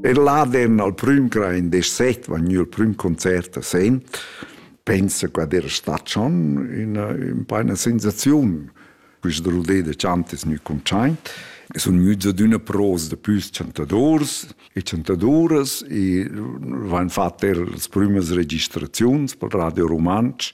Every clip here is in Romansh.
Er laden al prüm cra in des set vegniu il prüm concert a Sen, pensa qua era stat schon una, un una sensaziun, questa rodé de chantes nu conchain. Sun müts ad üna pros da püs chantadors e chantadoras e vain fat er las prümas registraziuns pel Radio Rumantsch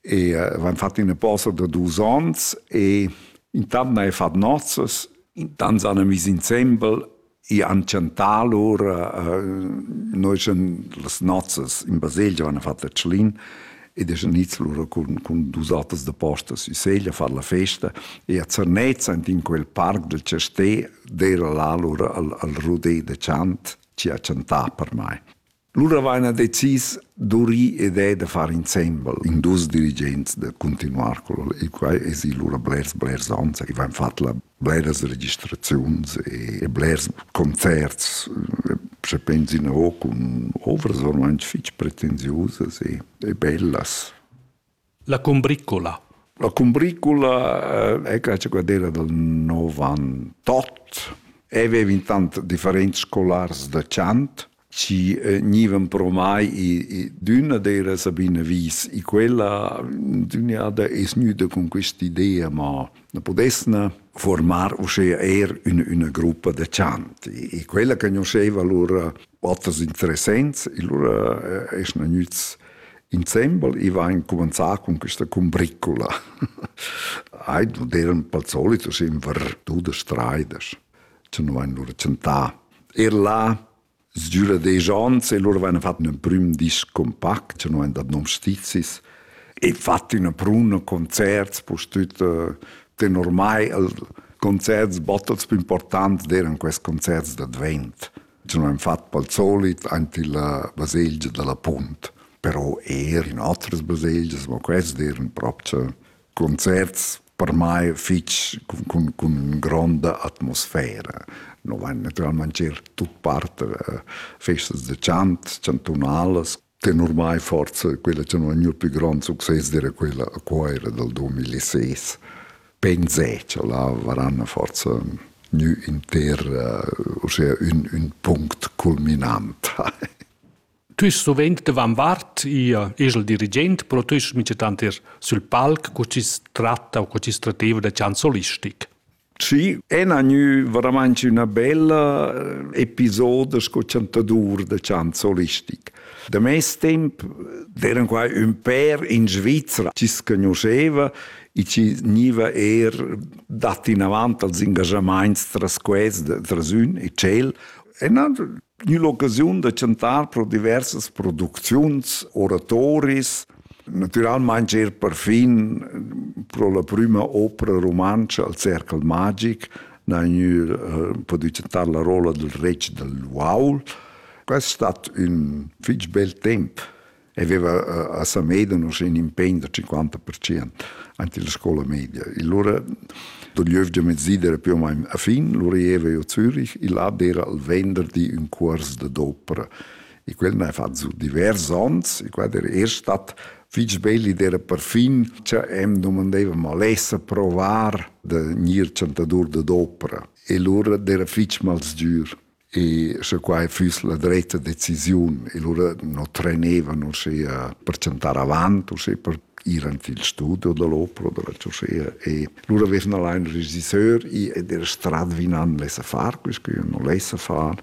e uh, van fat ina posa da dus ons e intant hai fat nozzas, intant san vis insembel e han chantar lur uh, noi schon las nozzas in baselgia van fat la Tschlin ed es niz lura cun, cun dus atas da postas in Seglia far la festa e a Zernez in quel parc del Cesté d'era là lura al, al Rodé de Chant ci ha chantar per mai. Lura vaina decis d'urir ed è da far insembel in dus dirigents da continuar col e quai es i lura blers blers ons i vain fat la bleras registraziuns e, e blers concerts se pensina o cun ovras ormai fich pretensiusas e, e bellas La cumbricula. La cumbricula eh, è questa quadrella del 98 aveva vintant differenti scolars da chant ci eh, nivan promai i d'una dera Sabine Wies i quella d'un'ada es gnüda con questa idea ma na podesna formar uschè er una, una gruppa de chant e quella conosceva lura oters interessents e lura eh, es na gnüts Insembel i va incumanzà cun questa cumbricula. Ai non eran pel solito sempre tudas traidas, che non han lur chantà. Er là Sdüra des Jans e loro hanno fatto un primo disco compact, che non hanno dat nom stizis, e fatto una bruna concerts, pus tutto, ten ormai il concerts bottels più importanti eran questi concerts d'Advent. Nous han fatg al solit aint illa baselgia da la Punt, però eir in otras baselgias, ma quest eran propcha concerts per mai fich cun, cun, cun gronda atmosfera. No vain naturalmaing er tut part a festas da chant, chantunalas. Tenor mai forse quella che non è gnut più grand succes dire quella a Coira del 2006. Pensé che là varanno forse gnü inter uh, ossia ün, ün punct culminant. tu ist sovent davan vart ihr esel dirigent, però tu ist mice tanter sul palc co ci tratta o co ci strateva da chansolistic. Sì, è gnü veramente üna bella eh, episoda sco chantadur da chant solistic. Da mes temp d'eran qua ün pèr in Svizra chi s'conosceva e chi gniva eir dat inavant als ingajamaints tras quels, tras ün e tschel. E nan gnü l'occasiun da chantar pro diversas producziuns, oratoris, Natüralmaing er perfin pro la prüma opera rumantscha al Cercle magic n'ha gnü pudü chantar la rolla dal retg dal uaul. Quest stat ün fich bel temp e veva a Samedan uschè ün impegn da 50% ant illa scoula media. E lura do giövgia mezzida era più o meno a fin, lura ieva io a Zürich e là d'era al venderdi ün cuors da d'opera e quel n'ha fatg divers onns e quella era er stat fitg bella ed era perfin che em domandeva ma lessa provar da gnir chantadur da d'opera e lura era fitg malsgür e sche quai füss la dretta decisiun e lura no trenevan uschea per chantar avant uschea per ir ant il studio dell'opera della Cioscea e lura avevano là un regisseur ed era strat vinand lessa far quest che io non lessa far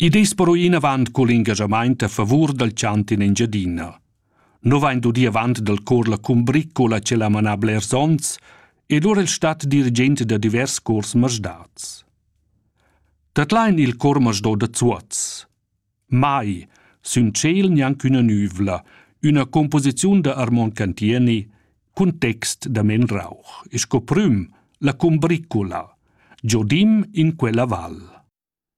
Id es però inavant cul ingaschamaint a favur dal chantin Engiadina. No vain dudi avant dal cor la cumbriccola ch'el ha manà blers ons ed ora el stat dirigent da divers cors masdats. Dat lain il cor masdò da Zuoz. Mai, sün tschel gnanc üna nüvla, üna composiziun da Armon Cantieni cun text da Men Rauch, e sco prüm la cumbriccola, giodim in quella val.